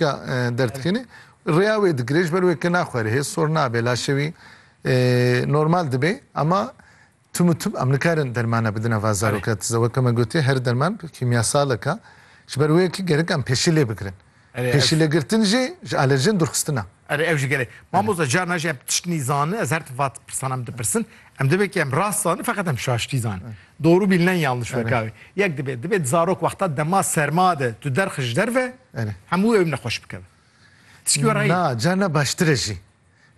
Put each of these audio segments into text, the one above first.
Ya derdikene rêya wê digirê ji ber wê ke naxwere hê sor nabe laşê wî normal dibe ama tim û tim em nikarin dermana bidin eva zaroka tize weke me gotiye her derman kîmyasaleka ji ber wê ki gerek em pêşî lê bigirin. Pêşî lê girtin jî ji alerjen durxistina. Erê ev jî gelê. Mamoza carna jî em tişt nîzani ez her vat pirsan em dipirsin. Em divê ki em rast zani feqet em şaştî zani. Doru bî nen yanlış vekari. Yek dibê, dibê zarok wexta dema serma de tu derxi ji der ve, hemû ew nexweş bikeve. Tişkî were yê. Na, carna baştir e jî.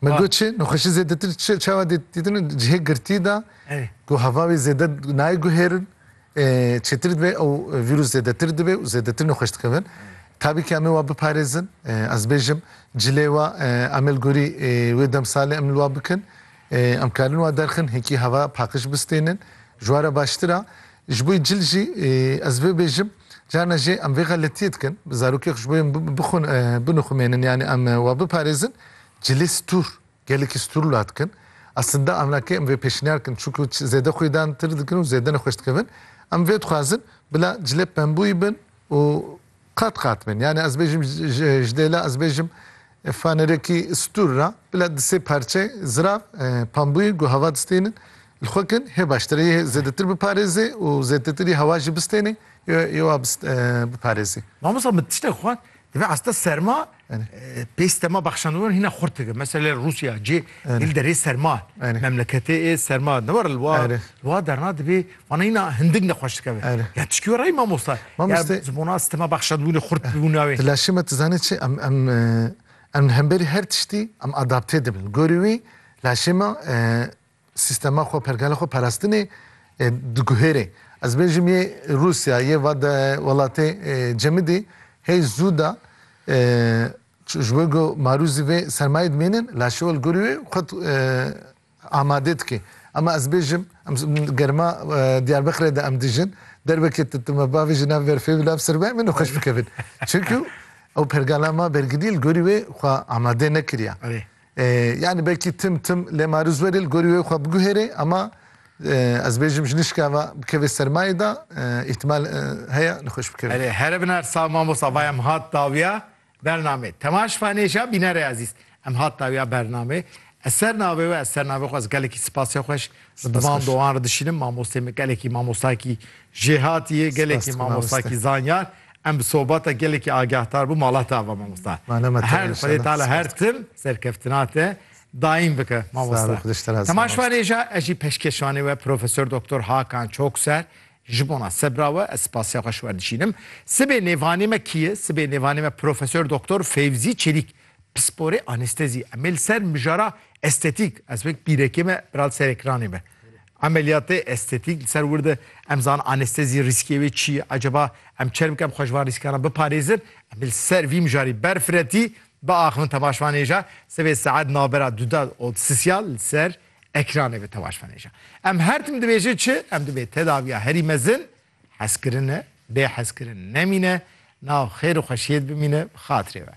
Me got çi, nexweşî zêdetir çawa dîtin ji hê girtî de ku heva wê zêde nayê guhêrin, çêtir dibe û vîrus zêdetir dibe û zêdetir nexweş dikevin. Tabîkî em ê wan biparêzin. Ez dibêjim cilê we em ê li gorî wê demsalê em li wan bikin. Em karin wa derxin hinkî heva paqij bistênin. Ji wa re baştir a. Ji bo cil jî ez vê bêjim, carna jê em vê xeletiyê dikin. Zarokê xwe ji bo yên binixumênin yanî em we biparêzin, cilê stûr, gelekî stûr la dikin. Aslinde amlakê em vê pêşniyar dikin. Çunku zêde xwîdantir dikin û zêde nexweş dikevin. Em vê dixwazin bila cilê pembûyî bin û Qat qat min. Yani ez bêjim ji dê la ez bêjim fanerekî stûr ra bila di sê parçe zirav pambûyê ku hava distênin li xwe kin hê baştir e. Yê zêdetir biparêzê û zêdetirî hewa jî bistênê yê wa biparêzê. Mamosta min tiştek xwend, divê esta serma Pê stema bexşandinan hîna xurt dike. Meselê Rûsya cê yê li derê serma ye. Memleketê ê serma ne war li wa li wa derna dibê wana hîna hindik nexweş dikeve. Ya tişkî were ê mamosta. Ya zibona stema bexşandibûnê xurt dibû navê. Tu laşê me tu zanî çi em em em li hemberî her tiştî em adapte dibin. Li gorî wî laşê me Sîstema xwe, pergala xwe parastinê diguhêrê. Ez bêjim yê Rûsya, yê va de welatê cemidî hey zû da ji bo ku marûzî vê sermayê dimênin la şewil gorî wê xwe amade dike. Ema ez bêjim em germa Diyarbekirê de em dijin, derbekê tu timi bavê ji nav berfê bi nav sermayê min nexweş bikevin. Çunku ew pergala ma bergirî li gorî wê xwe amade nekiriya. Yanî belkî tim tim lê ma riz werê li gorî wê xwe biguhêrê ema ez bêjim ji nişka ve bikevê sermayê de îhtimal heye li xweş bikevê. Erê here bin her sal mamosta va em hat dawiya bernamê. Tema şifanê jî ya bînerê ezîz em hat dawiya bernamê. Ez ser navê we ez ser navê xwe ez gelekî sipasê xweş li diman dowan re dişînim mamostê min gelekî mamostayekî jêhatî ye gelekî mamostakî zanyar Em bi sobata gelekî agahtar bû mala te ava mamosta. Ma ne me Her xwedê tala her tim serkeftina te daîm bike mamosta. Temaşvanê ja ez jî peşkeşvanê we Profesor Doktor Hakan Çokser ji bona sebra we ez spasê xwe ji we dişînim. Sibê nêvanê me kî ye? Sibê nêvanê me Profesor Doktor Fevzî Çelîk pisporê anestezî. Em ê li ser mijara estetîk ez wek bîrekê me bira li ser ekranê me. Emeliyatê estetîk li ser wir de em zan anestezî rîskê wê çi ye? Acaba em çer bikin em xwe ji van rîskan re biparêzin? Em li ser vî mijarî berfiretî biaxivin temaşvanêja sivê saet navbera Dudad û Sisya li ser ekranê be temaşvanêja. Em her tim dibêjin çi? Em divê tedaviya herî mezin, hezkirin e, bêhezkirin nemîne, nav xêr û xweşiyê de bimîne bi xatirê we.